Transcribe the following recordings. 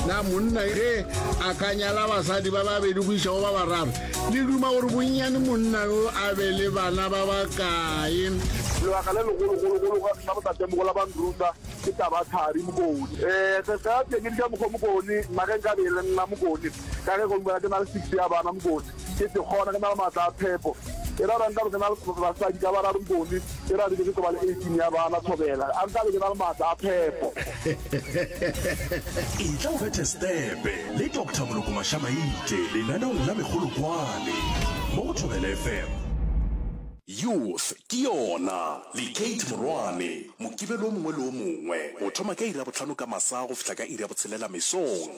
na monna ge a ka nyala basadi ba babedi go iša go ba bararo le duma gore bonnyane monna yo a be le bana ba ba kae lebaka le legologologolo sa botatemogo la banruta ke taba thari mokone um sesea teng ke dija mokgwa mokone nna ge nka be le nna mokone ka ge gongwe ke na le six ya bana mokone ke se kgona, ke na le maatla a phepo. E ra ra nkabe ke na le basadi ka bararo nkone, e ra re be ke tlo ba le 18 ya bana, thobela, a nkabe ke na le maatla a phepo. Etla o bethe setepe le Doctor Moloko Mashamaite lenaneong la Megolokwane mo go Thobela FM. Youth ke yona, le Kate Morwane, Mokibelo o mongwe le o mongwe, go thoma ka iri ya bohlano ka masa go fihla ka iri ya botshelela mesong.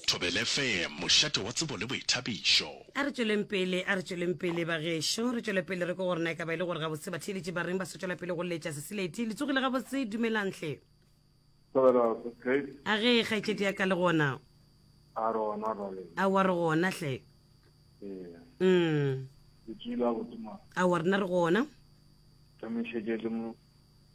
Thobele FM, mošate wa tsebo le boithabišo. A re tšweleng pele, a re tšweleng pele bagešo, re tšwele pele re ko gore na e ka ba e le gore gabotse batheeletši ba reng ba sotšwela pele go letša Sesileti. Le tsogile gabotse, dumelang hle. Thobela, Boss Kate. A ge kgaetšedi ya ka le gona? A re gona bale. A wa re gona hle. Ee. Mm. Le tswile gabotse mara. A wa rena re gona. Tšamišetše le mo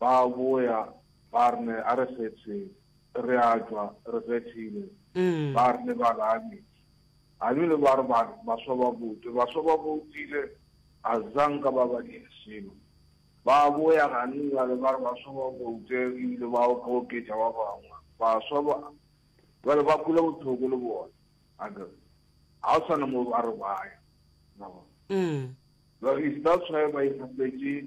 Ba boya, ba rne, A re kgethe, re a tšwa, re kgethile, ba rne, ba la ame. A bile ba re ba, baswa ba bote, baswa ba botile, a za nka ba ba dire selo. Ba boya gane bjale, ba re baswa ba bote, e bile ba oka oketša ba bangwe. Baswa ba, bjale ba kwele bothoko le bona, a ke re. Ga go sa na mo ba re ba ya. Na bona? Bjale, is that's why ba ikgapetše.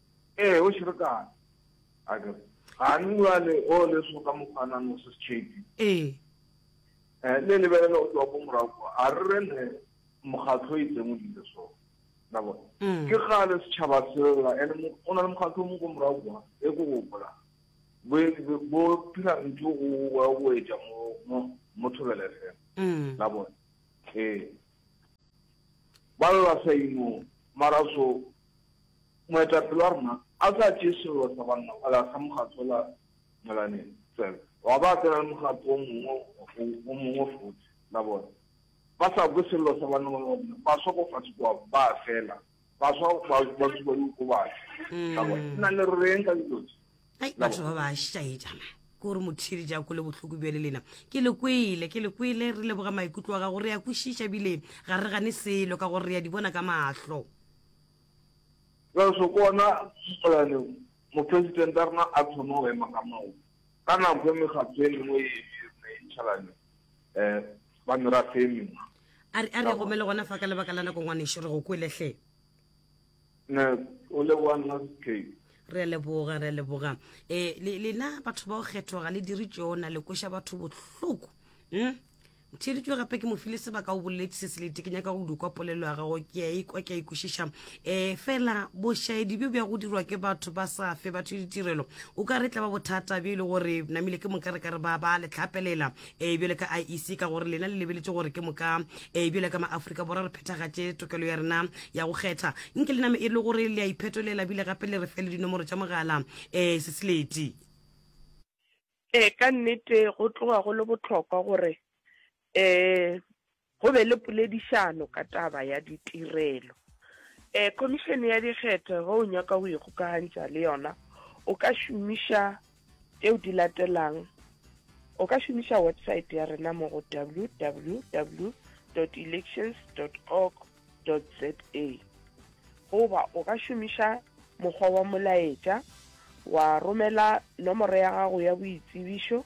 Ee, o šerekane. A ke re, Gane bjale o le soka mokgwanano se setšhepi. Ee. Eh, le lebelela o tloga ko morago kwa. A re re ne mokgatlho o itseng o dile so. La bona? Mm. Ke gale setšhaba sela, ene o na le mokgatlho mo ko morago kwa, e ko gopola. Bo, bo phira ntho o wa go etša mo, mo, mo thobele fela. Mm. La bona? Ee. Ba lla sa imo, mara so, Moetapele wa rena a tla tšee sello sa banna a lahla mokgatlo wola molaneng fela, wa ba a tsena le mokgatlo wo mongwe go wo mongwe fote. La bona? Ba sa kwe sello sa banna ba bona, ba swa ko fase kwa, ba fela. Ba swa, ba, ba tsuba diokobatši. La bona? Nna le reng ka dilo tše? ai batho ba ba šaetšana ke gore mothiri ja ko le bohloko bjale lena ke le kwele ke le kwele re leboga maikutlo wa gago re ya kwešiša bile ga re gane selo ka gore re ya di bona ka mahlo re se kona setswalane mopresidente a rena a thoma go ema ka maoto ka nako e mekgatho e mengwe e ebirena e ntšhalane um ba merafe e mengwe a re gomele gona fa ka lebaka la nako ngwanešo re go kweletlhe Ne, o leboga nna Cape. Re a leboga, re a leboga. E, le, lena batho ba go kgethwa ga le dire tšona, le kweša batho bohloko. Mm? theeditšwe gape ke mofile sebaka o boleletse se selete ke nyaka go dukwa polelo ya gago ke a ikwa ke a ikwešiša um fela bošaedi bjo bja go dirwa ke batho ba sa fe batho ditirelo o ka re tla ba bothata bjo e le gore namile ke moka re ka re ba ba letlhapelela ee bjale ka iec ka gore lena le lebeletše gore ke moka ee bjale ka maaforika borwa re phethagatše tokelo ya rena ya go kgetha nke le name e le gore le a iphetolela bile gape le re fe le dinomoro tša mogala ee seseleti ee ka nnete go tloga go le bohlokwa gore um Go be le poledišano ka taba ya ditirelo. E, Khomišene ya Dikgetho ge o nyaka go ikgokagantša le yona o ka šomiša tšeo di latelang, O ka šomiša websaete ya rena mo go www.elections.org.za goba o ka šomiša mokgwa wa molaetša wa romela nomoro ya gago ya boitsebišo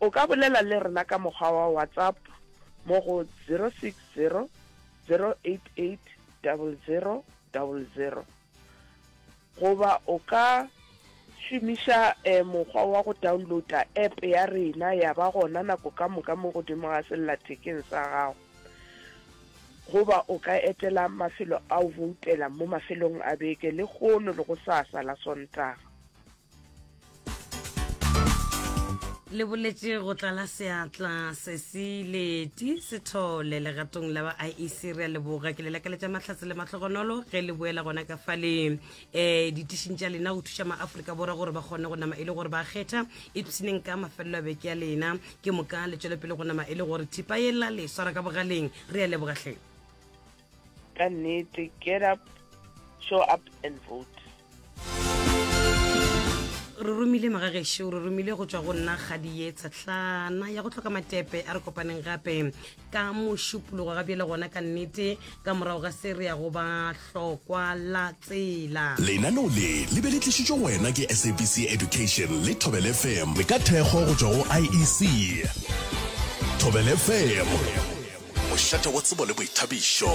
O ka bolela le rena ka mokgwa wa WhatsApp mo go 060-088-0000 goba o ka šomiša eh, mokgwa wa go downloada app ya rena ya ba gona nako ka moka mo godimo ga sellathekeng sa gago goba o ka etela mafelo a o voutela mo mafelong a beke le gono le go sasa la sontaga. le boletše go tlala seatla sesi leti sethole legatong la ba iec re a leboga ke le lakaletša mahlatse le mahlogonolo ge le boela gona ka fale um ditišing tša lena go thuša maaforika borwa gore ba kgone go nama e le gore ba kgetha epseneng ka mafelelo a beke ya lena ke moka le tšwelopele go nama e le gore thipa e la le swara ka bogaleng re a lebogatlheng ka nnete get up show up and vote re romile magagešo re romile go tswa go nna ga dietsa tlana ya go tlhoka matepe a re kopaneng gape ka mošupologo ga bjele gona ka nnete ka morago ga se re ya go ba hlokwa la tsela lenaneo le le be le tlišitšwe go wena ke sabc education le thobel fm le ka thekgo go tswa go iec thobel fm mošate wa tsebo le boithabišo